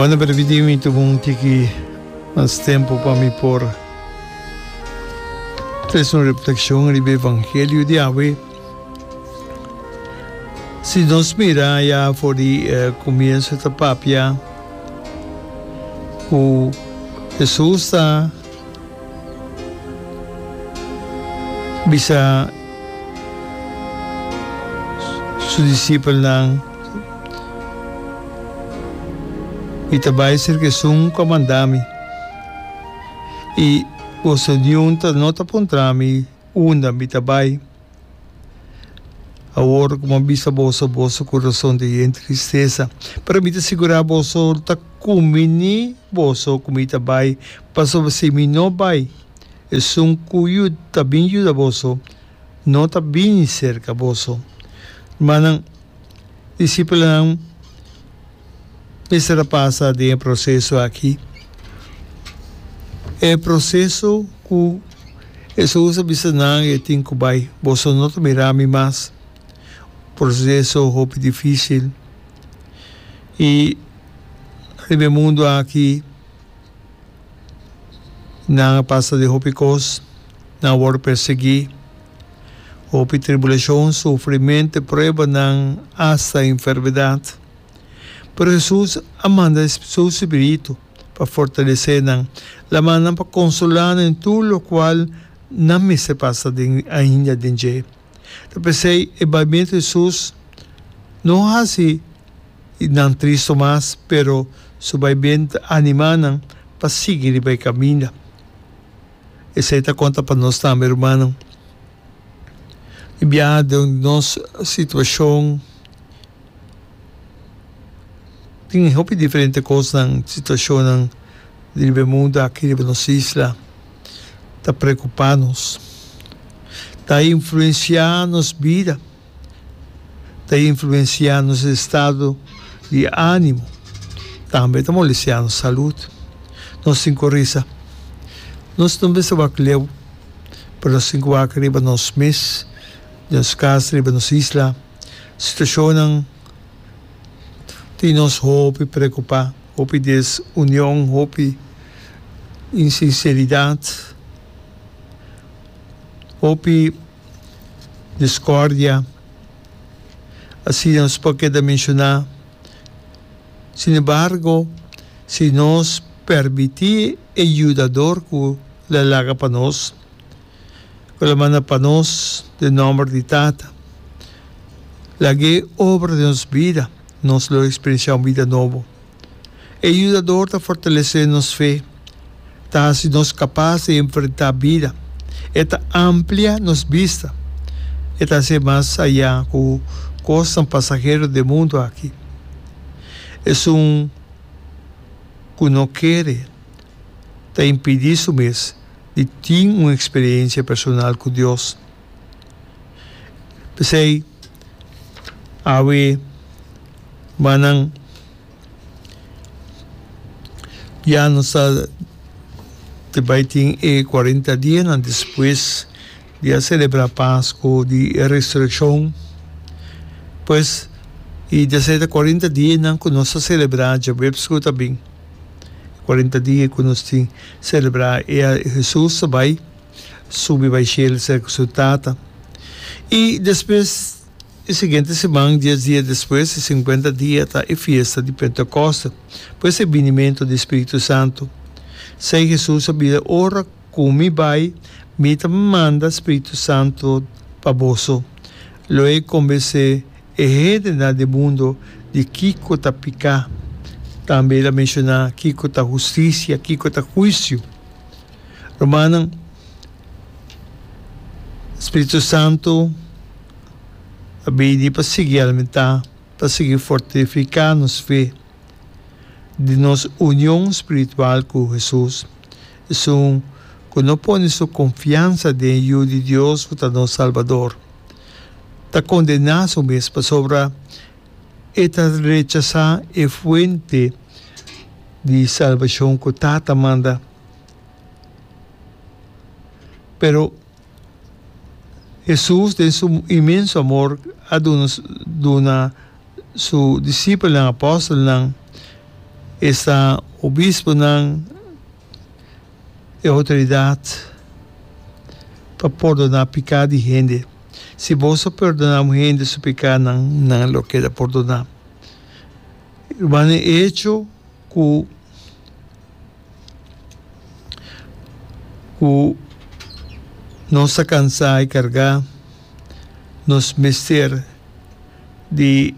Manda pa repetir mi tuvo un tiki mas tempo pa mi por tres un reflexion riba evangelio di awe. Si nos mira ya for di eh, comienzo ta papia cu Jesus ta bisa su discipelnan Mi ta bai serka esun ku a manda mi, i boso niun ta no ta puntra mi unda mi ta bai. Awor ku mi a bisa boso, boso kurason ta yen tristesa, pero mi ta sigurá boso ta kuminí boso ku mi ta bai, pasobra si mi no bai, esun ku ta bin yuda boso. no ta bini serka boso. Rmannan, disipelnan mester a pasa den e proseso aki, e proseso ku Esaú a bisa nan e tin ku bai, boso no ta mira mi mas. Proseso hopi difisil i riba e mundu aki. Nan a pasa di hopi kos, nan a wòrdu persiguí, hopi tribulashon, sufrimento i pruebanan, asta enfermedat. Pero Hesus a manda e su spiritu pa fortalesé nan, lamánan pa konsolá nan den tur lokual nan mester pasa den ainda den dje. Ta p'esei e baimentu di Jesús no hasi nan tristo mas, pero su baimentu a animá nan pa sigui riba e kaminda. Esei ta konta pa nos tambe, rumannan. Di biaha den di nos situashon, tin hopi diferente kosnan, situashonnan riba e mundu aki, riba nos isla. ta preokupá nos, ta influensiá nos bida, ta influensiá nos estado di ánimo, tambe ta molestiá nos salud. Nos tin ku korisa, nos no mester wak leu, pero nos tin ku wak riba nos mes, nos kas, riba nos isla. situacionnan tin nos hopi preocupa, hopi desunion, hopi insinceridad, hopi discordia, asina nos por keda menciona. Sin embargo si nos permiti e yudador cu lo laga pa nos. cu lo manda pa nos den nomber di Tata. Lag'é obra den nos bida, nos lo experiencia un bida nobo. E yudador ta fortalece nos fe, ta haci nos capaz di enfrenta bida, e ta amplia nos bista, e ta haci mas aya cu cosnan pasahero d'e mundo aki. Esun cu no kere ta impidi su mes. di tin un eksperensia personal ku Dios. P'esei, awe wak nan ya nos ta di bai tin e kuarenta dianan despues di a selebrá Pasko, di e Resurekshon, pues i desei ta kuarenta dianan ku nos ta selebrá djaweps ku ta bin. E cuarenta dia cu nos tin celebra e a Jesus a bay subi bay cielo cerca cu su Tata. Y despues e siguiente siman, dies dia despues, e cincuenta dia, ta e fiesta di Pentecoste, pues e binimento di e Spiritu Santo. Esey Jesus a bida, Ora cu mi bay, mi ta manda Spiritu Santo pa boso. Luego con bese. E hendenan den mundo di kiko ta piká. Tambe el a menshoná kiko ta hustisia, kiko ta huisio. Rumannan, spiritu santu a bini pa sigui alimentá, pa sigui fortifiká nos fe den nos union spiritual ku Hesus. Esun, ku no pone su konfiansa den Yu di Dios ku ta nos Salbador. ta kondená su mes pasobra e ta rechasá e Fuente di salbashon ku Tata manda. Pero Hesus den su inmenso amor a duna duna su disipelnan, apòstelnan, esta obisponan, e outoridat pa pordoná piká di hende. Si bos a pordoná un hende su pikánan, nan lo keda pordoná. Rumannan e hecho ku ku nos ta kansá i kargá, nos mester di.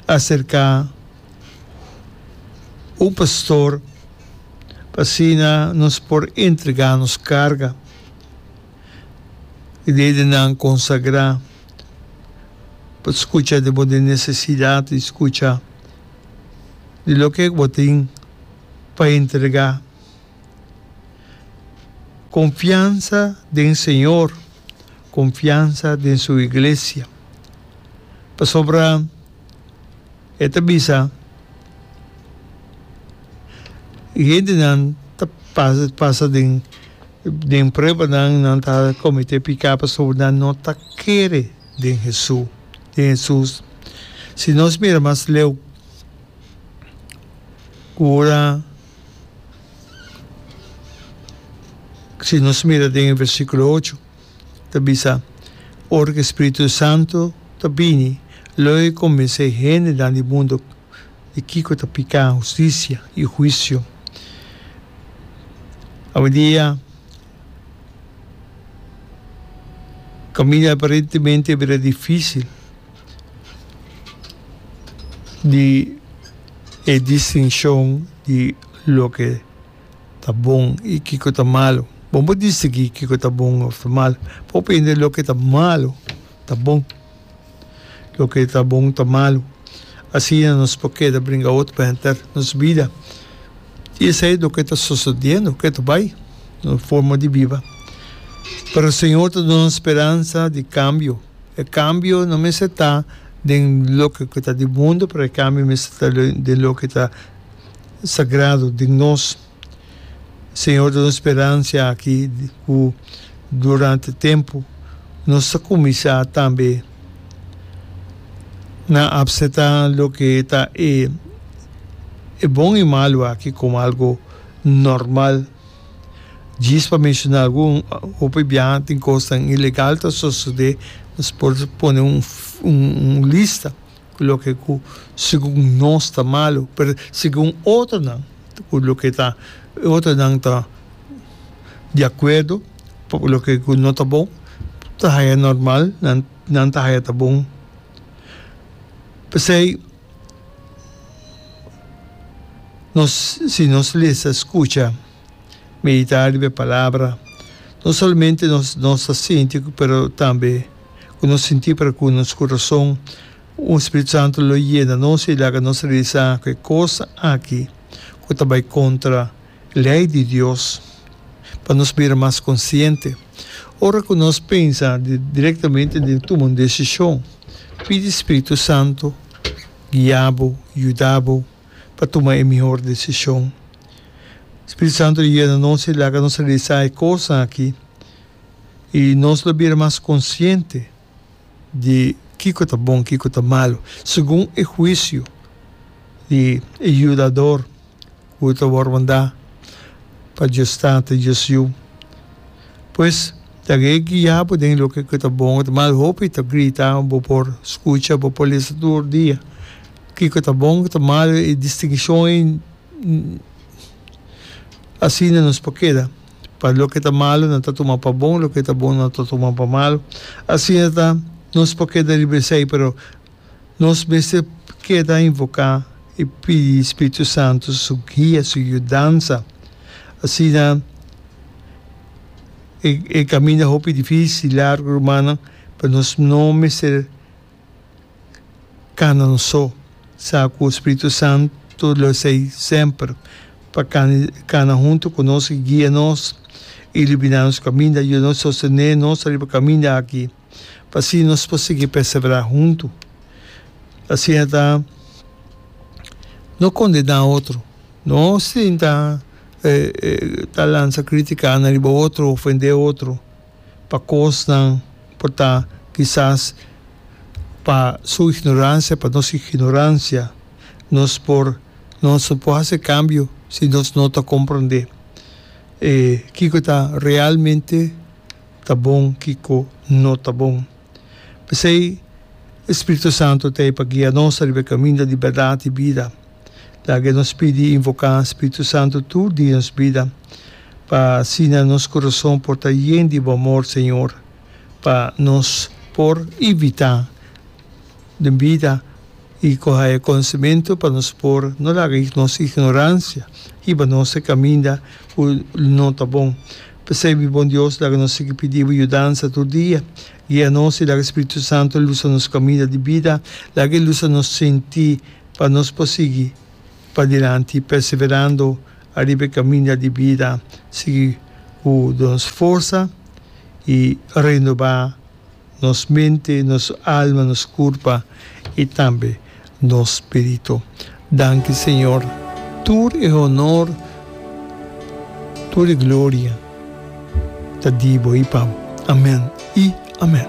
acerca un pastor pa asina nos por entrega nos carga di lidernan consagra pa scucha di bo necesidad y scucha di loke cu bo tin pa entrega. Confiansa den Señor. konfiansa den su iglesia. Pasobra e ta bisa, E hendenan ta pasa den pruebanan, nan ta kometé piká pasobra nan no ta kere den Hesus. Si nos mira mas leu, ku ora. Si nos mira den e versíkulo ocho, ta bisa, Ora ku e spiritu santu ta bini, lo e kombensé e hendenan di mundu di kiko ta piká, hustisia i huisio. Awendia, kaminda aparentemente a bira difísil. di e distinkshon di loke ta bon i kiko ta malu. Bon por distingui kiko ta bon òf ta malu. Por prende loke ta malu ta bon, loke ta bon ta malu. Asina nos por keda bringa otro pa henter nos bida. I esei loke ta sosodiendo, ke ta bai nos forma di biba. Pero Señor ta duna speransa di kambio. E kambio no mester ta den loke ku ta di mundu, pero e kambio mester ta den loke ta sagrado den nos. Señor ta duna speransia aki ku durante tempu nos ta kuminsá tambe na apseptá loke ta e bon i malu aki komo algu normal. Djis pa menciona algun, hopi biaha tin cosnan ilegal ta sosode, nos por pone un un lista cu loke cu segun nos ta malo, pero segun otronan cu loke ta otronan ta di acuerdo cu loke cu no ta bon ta haya normal nan ta haya ta bon. P'esey. Nos, si nos lesa, skucha, meditá riba e palabra, no solamente nos nos ta sinti pero tambe ku nos sinti pero ku nos kurason, un Spiritu Santu lo yena nos i laga nos realisá ku e kos aki ku ta bai kontra. Lei di Dios. Pa nos bira mas konsiente, ora ku nos pensa direktamente den tuma un desishon, pidi Spiritu Santu guia bo, yuda bo pa tuma e mihor desishon. Spiritu Santu lo yena nos i laga nos realisá e kos aki, i nos lo bira mas konsiente. di kiko ta bon, kiko ta malu, segun e huisio di e yudador ku ta wòrdu mandá pa Dios Tata, Dios Yu. Pues, ta ke guia bo den loke ku ta bon ku ta malu. Hopi ta grita, bo por skucha, bo por lesa tur dia kiko ta bon, kiko ta malu. E distingishon ei asina nos por keda. Pa loke ta malu nan ta tuma pa bon, loke ta bon nan ta tuma pa malu. Asina ta, nos por keda riba esei, pero nos mester keda invoká i pidi Spiritu Santu su guia, su yudansa. Asina e kaminda hopi difísil, largu rumannan, pero nos no mester Canan so, sa cu Spiritu Santu lo esey semper pa cana hunto cu nos y guia nos, ilumina nos caminda, yuda nos y sostene nos riba caminda aki, pa asina nos por sigui persevera hunto. Asina ta, no condena otro, no sinta ta lansa critica na riba otro, ofende otro. pa kosnan por ta kisas pa su ignoransia, pa nos ignoransia, nos por nos no por hasi kambio si nos no ta komprondé kiko ta realmente ta bon, kiko no ta bon. P'esei, e Spiritu Santu ta ei pa guia nos riba e kaminda di bèrdat i bida. Laga nos pidi i invoká Spiritu Santu tur dia nos bida, pa asina nos kurason por ta yen di bo amor, Señor, pa nos por ivitá den bida i kohe e konosementu pa nos por no laga nos ignoransia hiba nos e kaminda ku no ta bon. P'esei mi Bon Dios, laga nos sigui pidi bo yudansa tur dia. Guia nos i laga e Spiritu Santu lusa nos kaminda di bida, laga e lusa nos sinti pa nos por sigui padilanti perseverando ariba e kaminda di bida, sigui ku do nos forsa i renobá nos mente, nos alma, nos kurpa i tambe nos spiritu. Danki Señor, tur e honor, tur e gloria ta di bo i pa bo. Amen i amen.